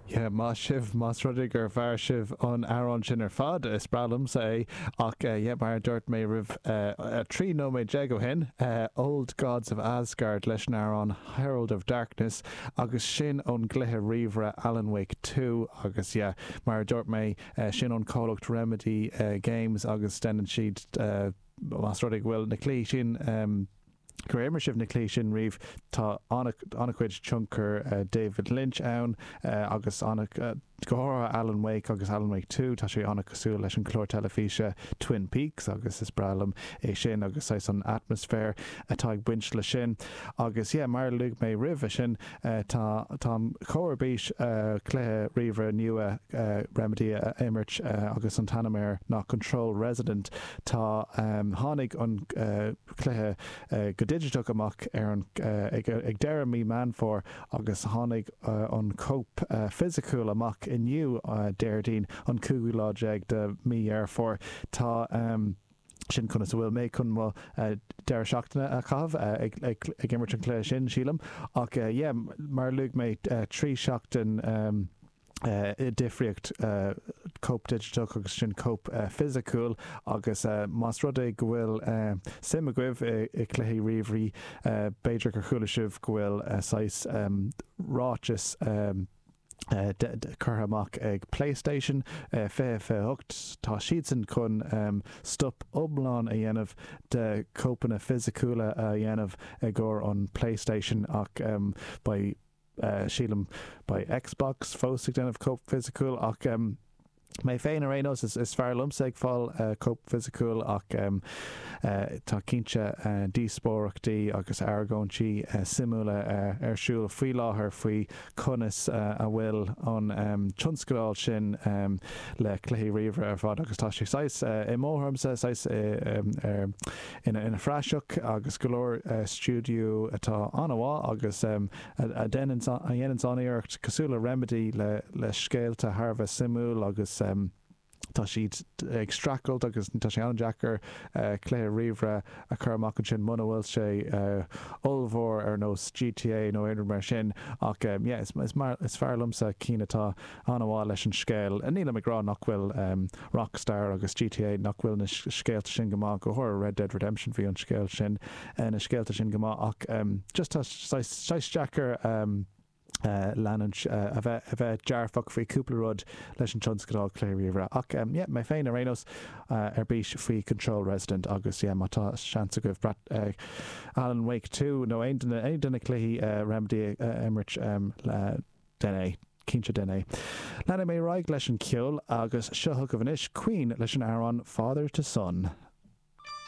Yeah, maith sibh, más rud é gur mhair sibh an t-amhrán sin ar fad, is breá liomsa é, ach yeah mar a dúirt mé roimh 13 nóiméad ó shin, Old Gods of Asgard leis an amhrán Herald of Darkness agus sin ón gcluiche ríomhaire Alan Wake Two agus yeah mar a dúirt mé, sin ón comhlacht Remedy Games agus deineann siad, más rud é go bhfuil na cluichí sin. Gur imir sibh na cluichí sin riamh. Tá an-chuid tionchar David Lynch ann agus go háirithe Alan Wake agus Alan Wake Two. Tá sé an-chosúil leis an chlár teilifíse Twin Peaks agus is breá liom é sin agus saghas an atmaisféir atá ag baint le sin. Agus yeah, mar a luaigh mé roimhe sin, tá táim chomh ar bís cluiche ríomhaire nua Remedy a imirt agus an t-ainm air ná Control Resident. Tá tháinig an. cluiche go digiteach amach ar ag deireadh mí Meán Fómhair agus tháinig an chóip fisiciúil amach inniu, Déardaoin, an cúigiú lá déag de mí Dheireadh Fómhair. Tá sin conas a bhfuil mé chun mo deireadh seachtaine a chaitheamh, ag imirt an chluiche sin, sílim. Ach yeah, mar a luaigh mé, trí sheachtain. difríocht cóip digiteach agus ansin cóip fisiciúil agus más rud é go bhfuil suim agaibh i cluichí ríomhairí b'fhéidir gur chuala sibh go bhfuil saghas ráiteas curtha amach ag Playstation 2028, tá siadsan chun stop iomlán a dhéanamh de chóipeanna fisiciúla a dhéanamh i gcomhair an Playstation ach beidh. sílim. Beidh Xbox fós ag déanamh cóip fisiciúil ach mé féin ar aon nós is fearr liomsa ag fáil cóip fisiciúil ach tá cinnte díospóireachtaí agus argóintí suimiúla ar siúl faoi láthair faoi conas a bhfuil an tionscadal sin le cluichí ríomhaire ar fad agus tá sé saghas i mo thuairimse saghas ar ina phraiseach agus go leor stiúideo atá an-mhaith agus a dhéanann an-iarracht, cosúil le Remedy, le scéalta thar a bheith suimiúil agus tá siad ag streachailt agus tá sé an-deacair cluiche ríomhaire a chur amach ansin muna bhfuil sé ollmhór ar nós GTA nó aon rud mar sin ach yeah is fearr liomsa cinn atá an-mhaith leis an scéal. Nílim ag rá nach bhfuil Rockstar agus GTA, nach bhfuil na scéalta sin go maith, go háirithe Red Dead Redemption, bhí an scéal sin, na scéalta sin go maith ach just tá saghas deacair leanúint, a bheith, a bheith dearfach faoi chúpla rud leis an tionscal cluiche ríomhaire. Ach yeah, mé féin ar aon nós ar bís faoi Control Resonant agus yeah má tá seans agaibh breathnú Alan Wake Two nó aon de na, aon de na cluichí Remedy a imirt, déan é. Cinnte déan é. Leanfaidh mé ar aghaidh leis an gceol agus seo chugaibh anois Queen leis an amhrán Father to Son.